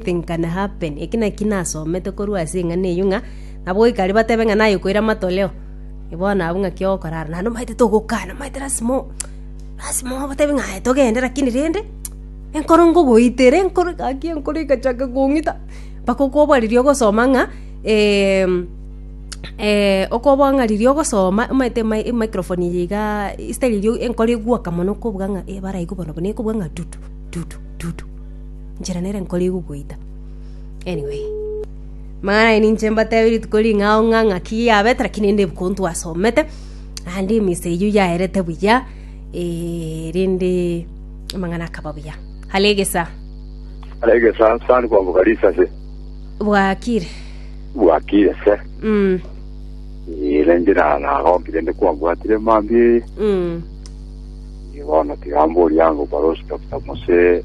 Nothing can happen. Eki naki nasomete korwa ase eng'ana eyio ng'a nabo goika aria batebe ng'a naye okoira matoleo. Eh, Bono abwo ng'aki ogokora are. Naende omanyete togokana, omanyete lasima o- lasima obatebie ng'a aye togende lakini rende enkoro nkogoitera enkoro gaki enkoro egachaka kong'ita mpaka okoboa riria ogosoma ng'a okoboa ng'a riria ogosoma omanyete ema- emicrophone eye igaa instead riria enkoro egoaka mono okobuga ng'a eh baraigu bono buna ekobuga ng'a tutu tutu tutu. Njera nere nkorigwe goita. Anyway. Mang'ana aye ninche mbatebe rituko ring'ao ng'a ng'aki yabete, lakini ende ebuku ntwasomete. Naende emisa eyio yaerete buya, eh, rende amang'ana akaba buya. Hare egesa, Arege sa sani kwa bugarisa se. bwakire. Bwakire se. Mm, Ile njira na roki rende kwa bwatire mambi. mm. Ibono tigambo yango barosi Dr. Mose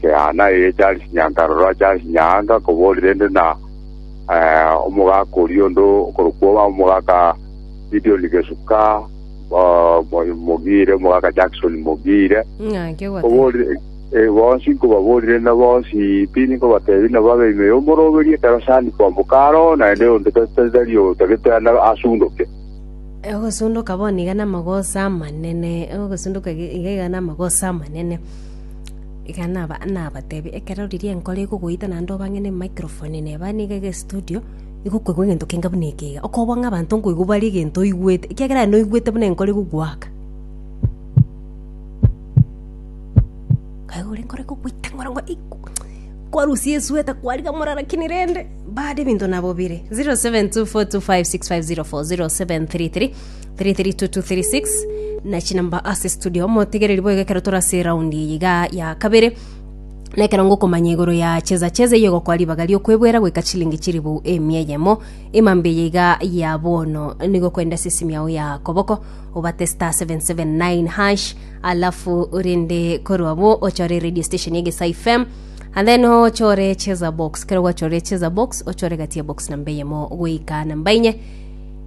Kehana eye Charisinya nkarora Charisinya anga koborire ende na omogaka oria onde okorokwo omogaka Gideon Gesuka Mogire, omogaka Jackson Mogire, koborire bonsi nkobaborire na bonsi tindi nkobatebi na babe ime y'omoroberi ekero sani kwamboka aro naende onde tari otagete asundoke. Ogosundoka bono iga namagoso amanene, ogosundoka iga iga namagoso amanene. Iga naba- nabatebi, ekero riria enkoro ekogoita naende obang'ene emicrophone ene ebane iga iga estudio, nigo okoigwa egento kenge buna eke iga, okobua ng'a abanto nkoigwa bare egento oigwete, ekiagera aye noigwete buna enkoro egogoaka. Kaigure enkoro ekogoita ng'a orong'o iku kwarusia esweta kwarigia morero lakini rende, bado ebinto nabo bire. 0724256504 0733. 33236 na chinamba ase studio motegereri boigo ekero tore ase round eye iga ya kabere na ekero ngokomanya igoro ya cheza cheza iye gokoa ribaga riokwebwera goika chilingi chiribu emia eyemo emambe eye iga ya bono nigo kwenda ase esimi yao ya koboko obate star 779 hash alafu rende korwa bo ochore radio station ya gesa fm and then ochore cheza box kero gwachore cheza box ochore gatia box namba eyemo goika namba enye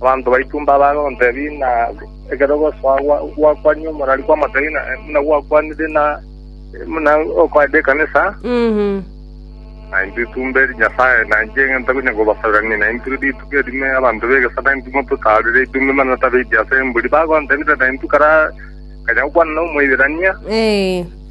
Abanto baito mbabaga ogontebia ng'a ekero ogosoa gwakwania omorwari kw'amotebia ng'a buna gwakwanire na buna okoenda ekanisa, na intwe tumbe eri Nyasae, na inche ng'a ntakonya kobasaberania, na intwe rituko erime abanto b'egesaku na intwe mototaarire ebitunwa ebimanano tabeiti ase embori. Bagontebia, Tari naintwe kare akanya gokwana na Omoiberania?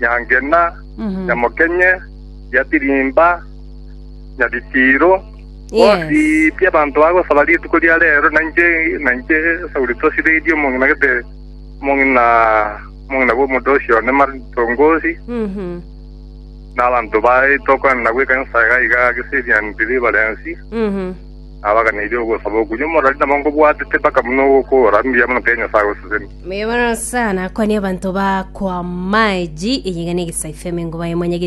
Nyangena, Nyamokenye, Nyatirimba, Nyabitiiro, bonsi Yes. pi abanto bagosaba rituko ria reero, na inche na inche Sauli tosireirie omong'ina gete omong'ina omong'ina bw'omonto ocio one matongosi, Mhm. na abanto baye tokwana nabwo ekanisa iga iga ase Syrian Deliverance. Mhm. Nabaganeirie ogosaba okwo inwe morari nabo nkobwatete mpaka buna ogokora mbuya mono kere Nyasae oseseni. Bono Nyasae nakwanie abanto baa koa maji, eyegene egesaife emengo baye monyegete.